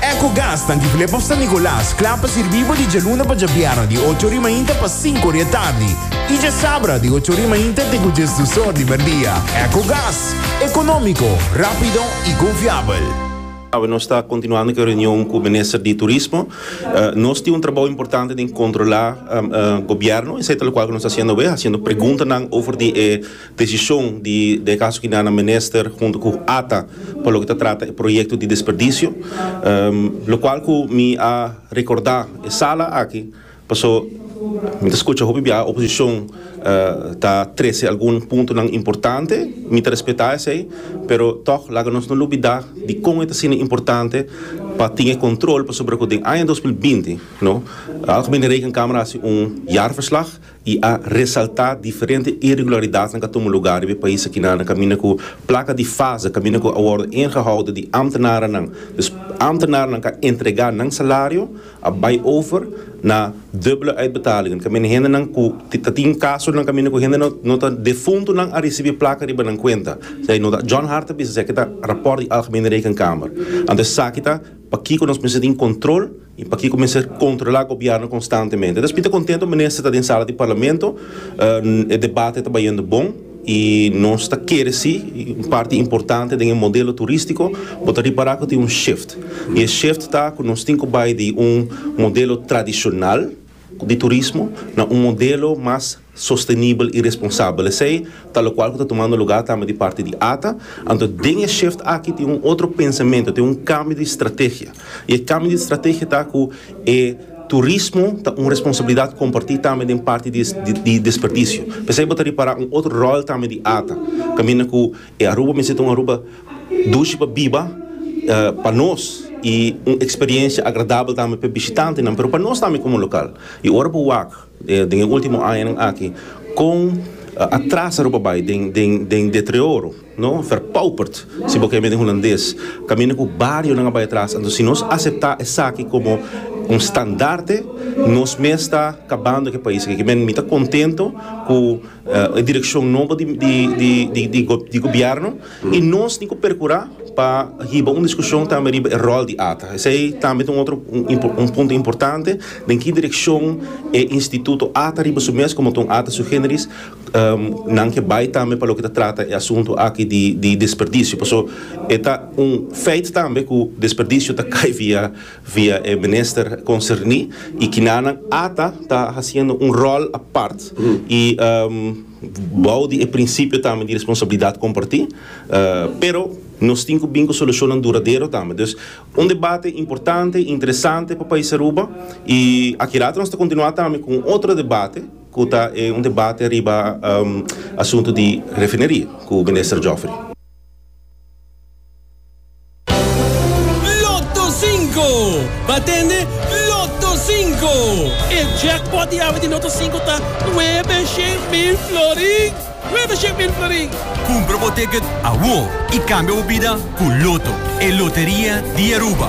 Ecogas nan di Flip of San Nicolas kla pa sirbi bo di djaluna pa djabièrnè di ocho ori mainta pa sinku ori e tardi i djasabra di ocho ori mainta te ku djesdusor di merdia. Ecogas, ekonómiko, rápido i konfiabel. Awe nos ta kontinuando ku e reunion ku minister di turismo. Nos tin un trabou importante den kontrolá gobièrnu, esei ta lokual ku nos ta hasiendo awe, hasiendo preguntanan over di e. Desishon di den kaso kina na Minister huntu ku ata pa loke ta trata e proyekto di desperdisio, lokual ku mi a rekordá e sala aki paso mi ta skucha hopi biaha oposishon ta trese algun puntonan importante, mi ta respetá esei, pero tòg laga nos no lubidá di kon e ta asina importante pa tin e kontrol pasobra ku den aña dos mil binti no, Algemene Rekenkamer a hasi un jaarverslag, y a resalta diferente irregularidadnan ca tuma lugar riba e pais akina na caminda cu placa di fase caminda cu a wordo ingehoudo di ambtenarennan dus ambtenarennan ca entrega nan salario a bay over na dubbele uitbetalingen caminda hendenan cu ta tin casonan caminda cu hende no ta defuntonan a ricibi placa riba nan cuenta esaki no ta John Hart a bisa esaki ta rapport di Algemene Rekenkamer anto esaki ta pakico nos mester tin control. I pakiko mester kontrolá gobièrnu konstantemente? Entonces mi ta kontento minister ta den sala di parlamento. E debate ta bayendo bon i nos ta kere si un parti importante den e modelo turístiko bo ta ripará ku tin un shift. I e shift ta ku nos tin ku bai di un modelo tradishonal di turismo na un modelo mas. sostenibel i responsabel. Esei ta lokual ku ta tumando lugá tambe di parti di ata. Anto den e shift aki tin un otro pensamentu, tin un kambio di strategia. I e kambio di strategia ta ku e turismo ta un responsabilidat kompartí tambe den parti di di desperdisio. P'esei bo ta ripará un otro ròl tambe di ata kaminda ku e Aruba mester ta un Aruba dushi pa biba pa nos i un eksperiencia agradabel tambe p'e bishitantenan pero pa nos tambe komo lokal. I ora bo wak. Den e ultimo añanan aki con a trasa Aruba bay den deterioro, no? Verpauperd, si bo kende den Hulandes, caminda cu barionan a bay atras. Anto si nos acepta esaki como un standaarde, nos mes ta cabando cu e pais aki. Kimen mi ta contento cu e direccion nobo di Gobierno. I nos tin ku perkurá pa hiba un diskushon tambe riba e ròl di ata. Esei tambe ta un otro un punto importante, den ki direkshon e instituto ata riba su mes komo ta un ata sui generis nan ke bai tambe pa loke ta trata e asuntu aki di di desperdisio. Paso e ta un feit tambe ku desperdisio ta kai via via e minister konserní i kinanan ata ta hasiendo un ròl apart i. Bou di e prinsipio tambe di responsabilidat kompartí, pero nos tin ku bin ku solushonnan duradero tambe. Dus un debate importante, interesante pa pais Aruba i aki rato nos ta kontinuá tambe ku un otro debate ku ta e un debate riba asuntu di refineria ku Minister Geoffrey. Lotto Cinco! Bo a tende? Lotto Cinco! E jackpot di awe di Lotto Cinco ta nuebe shen mil florin! Nuebe shen mil florin! Cumpra bo ticket awor y cambia bo bida cu Lotto, e loteria di Aruba!